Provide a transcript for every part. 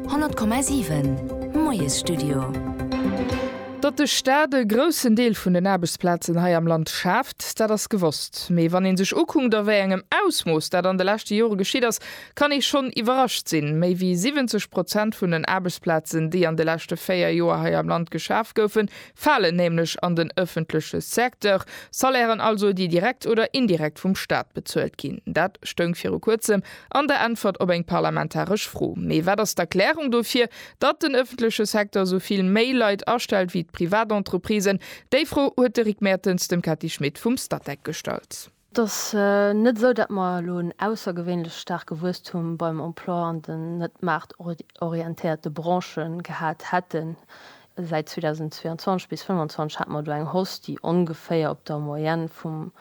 100,7 Moiesstudio. Datt de Staat e groussen Deel vun den Aarbechtsplazen hei am Land schaaft, dat ass gewosst. Mee wann ee sech ukunkt a wéi engem Ausmooss dat an de leschte Jore geschitt ass, kann ee schonn iwwerrascht sinn. Méi wéi 70 Prozent vun den Aarbechtsplazen, déi an de leschte véier Joer hei am Land geschaf goufen, falen nämlech an den ëffentleche Secteur, Salairen also, déi direkt oder indirekt vum Staat bezuelt ginn. Dat stoung viru kuerzem an der Äntwert op eng parlamentaresch Fro. Mee wat ass d'Erklärung dofir, datt den ëffentleche Secteur esou vill méi Leit astellt wéi d'Privatentreprisen? Déi Fro huet de Rick Mertens dem Cathy Schmit vum Statec gestallt. Et ass net esou, datt mer elo en aussergewéinlech staarke Wuesstum beim Emploi an den net maartorientéierte Branche gehat hätten. Säit 2022 bis 2025 hate mer do eng Hausse, déi ongeféier op der Moyenne vum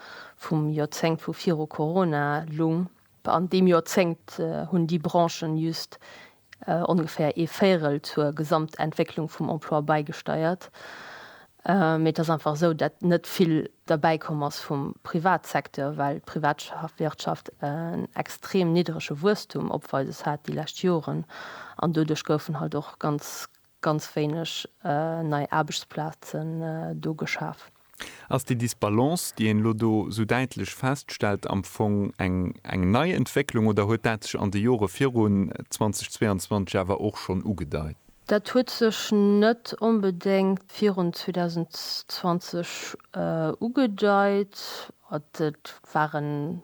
Joerzéngt vu viru Corona lung. An deem Joerzéngt hunn déi Branchen just ongeféier ee Véirel zur Gesamtentwécklung vum Emploi bäigesteiert. Mee et ass einfach esou, dat net vill derbäi komm ass vum Privatsecteur, well d'Privatwirtschaft en extrem niddrege Wuesstum opweises hat déi lescht Joren. An doduerch goufen halt och ganz ganz wéineg nei Aarbechtsplazen do geschaf. Ass déi Disbalance, déi een elo do esou däitlech feststellt, am Fong eng nei Entwécklung oder huet dat sech an de Jore virun 2022 awer och schonn ugedeit? Dat huet sech net onbedéngt virun 2020 ugedeit. Et waren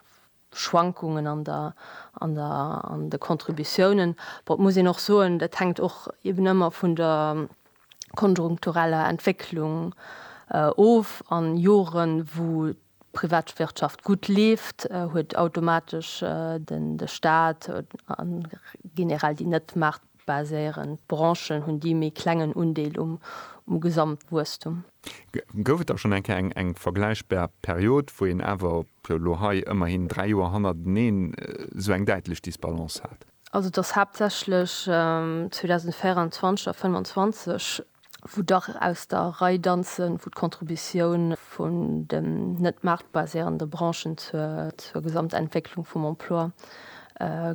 Schwankungen an der, an der, an de Contributiounen. Bon, et muss een och soen, dat hänkt och eben ëmmer vun der konjunktureller Entwécklung of. A Joren, wou d'Privatwirtschaft gutt leeft, huet automatesch de Stat, an generell déi net baséieren. D'Branchen hunn déi méi klengen Undeel um Gesamtwuesstum. Gouf et da schonn eng Kéier eng vergläichbar Period, wou een awer elo hei ëmmerhin dräi Joer hannerteneen esou eng däitlech Disbalance hat? Also et ass haaptsächlech 2024 a 2025, wou dach aus der Rei danzen, wou d'Contributioun vun den net maartbaséierende Branchen zur Gesamtentwécklung vum Emploi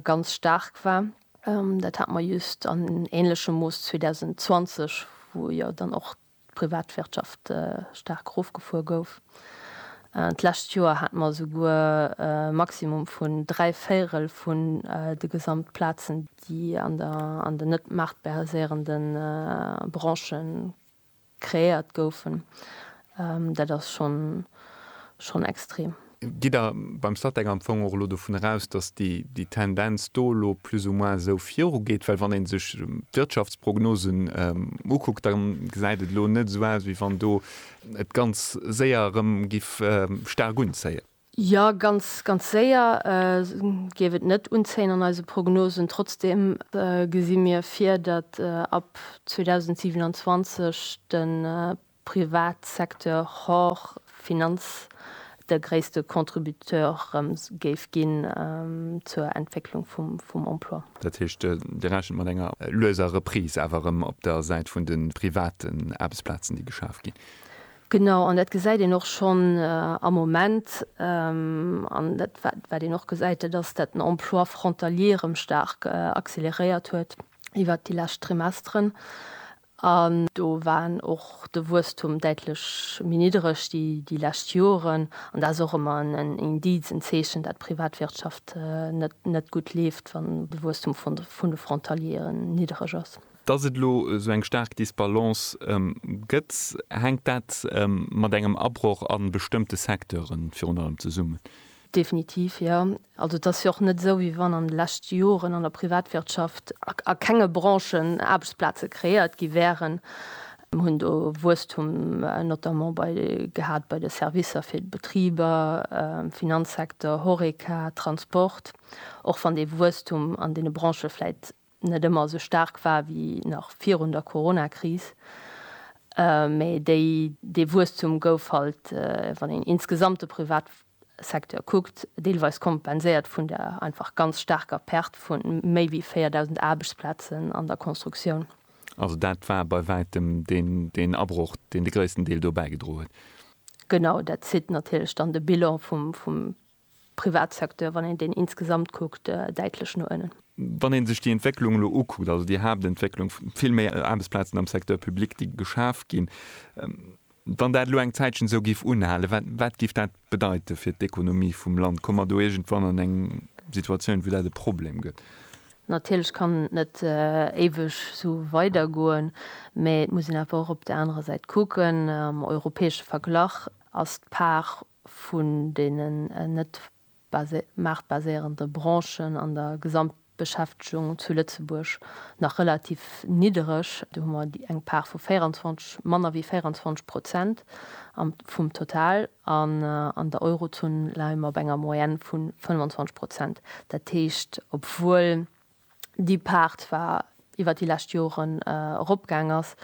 ganz staark war. Dat hate mer just an änlechem Mooss 2020, wou jo dann och d'Privatwirtschaft staark erofgefuer gouf. D'lescht Joer hate mer esouguer e Maximum vun dräi Véirel vun de Gesamtplazen, déi an den net maartbäreséierende Branche Kreéiert goufen. Dat ass schonn extrem. Gitt Der beim Statec am Fong och elo dovun eraus, dass déi Tendenz do elo plus ou moins esou virugeet? Well wann ee sech d'Wirtschaftsprognosen ukuckt, da gesäit et elo net esou aus, wéi wann do et ganz séier erëm giff staark unzéien. Jo, ganz, ganz séier géif et net unzéien an eise Prognosen. Trotzdeem gesi mir vir, datt ab 2027 de Privatsecteur hors Finanz de gréisste Contributeur erëm géif ginn zur Entwécklung vum Emploi. Dat heescht, Dir rechent mat enger lueser Reprise awer erëm op der Säit vun de private Aarbechtsplazen, déi geschaf ginn? Genau, an dat gesäit een och schonn am Moment, an dat wat een och gesäit, dat ass, dat den Emploi frontalier erëm staark acceleréiert huet iwwert déi lescht Trimesteren. An do war och de Wuesstum däitlech méi niddereg déi lescht Joren. An dat ass och ëmmer en Indiz, en Zeechen, dat d'Privatwirtschaft net gutt leeft, wann de Wuesstum vun de Frontaliere niddereg ass. Dass et elo esou eng staark Disbalance gëtt, hänkt dat mat engem Abroch a bestëmmte Secteure virun allem zesummen? Definitiv, jo. Also et ass jo och net esou, wéi wann an de leschte Joren an der Privatwirtschaft a kenge Branchen Aarbechtsplaze kreéiert gi wäeren. Mir hunn do Wuesstum notamment bei gehat bei de Servicer fir d'Betriber, Finanzsecteur, Horeca, Transport, och wann dee Wuesstum an deene Branchë vläicht net ëmmer esou staark war wéi nach virun der Coronakris, mä déi dee Wuesstum gouf halt, wann een insgesamt de Privatsecteur kuckt, deelweis kompenséiert vun der einfach ganz staarker Perte vu méi wéi 4.000 Aarbechtsplazen an der Constructioun. Also dat war bei wäitem deen Abroch, deen de gréissten Deel dobäi gedro huet. Genau, dat zitt natierlech dann de Bilan vum Privatsecteur, wann een deen insgesamt kuckt, däitlech no ënnen. Wann ee sech déi Entwécklung elo ukuckt, also déi Haaptentwécklung, vill méi Aarbechtsplazen am Secteur public, déi geschaf ginn, wann dat elo eng Zäitchen esou géif unhalen, wat géif dat bedeite fir d'Ekonomie vum Land? Komme mer do iergendwann an eng Situatioun, wou dat e Problem gëtt? Natierlech kann et net éiweg esou weidergoen, mä et muss een awer och op där anerer Säit kucken, am europäesche Verglach ass d'Part vun deenen net maartbaséierende Branchen an der Gesamtbeschäftegung zu Lëtzebuerg nach relativ niddereg. Do hu mer eng Part vu 24, manner wéi 24 Prozent vum Total. An an der Eurozon leie mer op enger Moyenne vu 25 Prozent. Dat heescht, obwuel déi Part zwar iwwer déi lescht Joren eropgaang ass,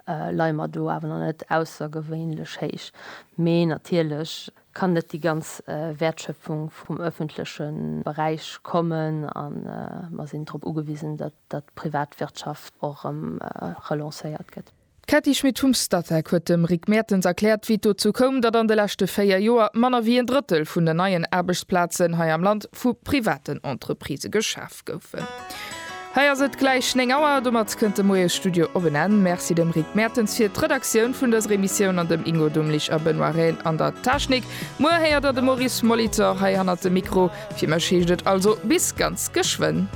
leie mer do awer nach net aussergewéinlech héich. Mee natierlech kann net déi ganz Wäertschöpfung vum öffentleche Beräich kommen a mer sinn drop ugewisen, datt d'Privatwirtschaft och erëm relancéiert gëtt. D'Cathy Schmit-Hums-Statec huet dem Rick Mertens erkläert, wéi et dozou koum, datt an de leschte véier Joer manner wéi een Drëttel vun den neien Aarbechtsplazen hei am Land vu privaten Entreprisë geschaf goufen. Hei ass et gläich 9 Auer. Domat kënnt de Moiesstudio op en Enn. Merci dem Rick Mertens fir d'Redaktioun vun dëser Emissioun an dem Ingo Dumlich a Benoît Rehn an der Technik. Muer héiert der de Maurice Molitor hei hannert dem Mikro. Fir mech heescht et also bis ganz geschwënn.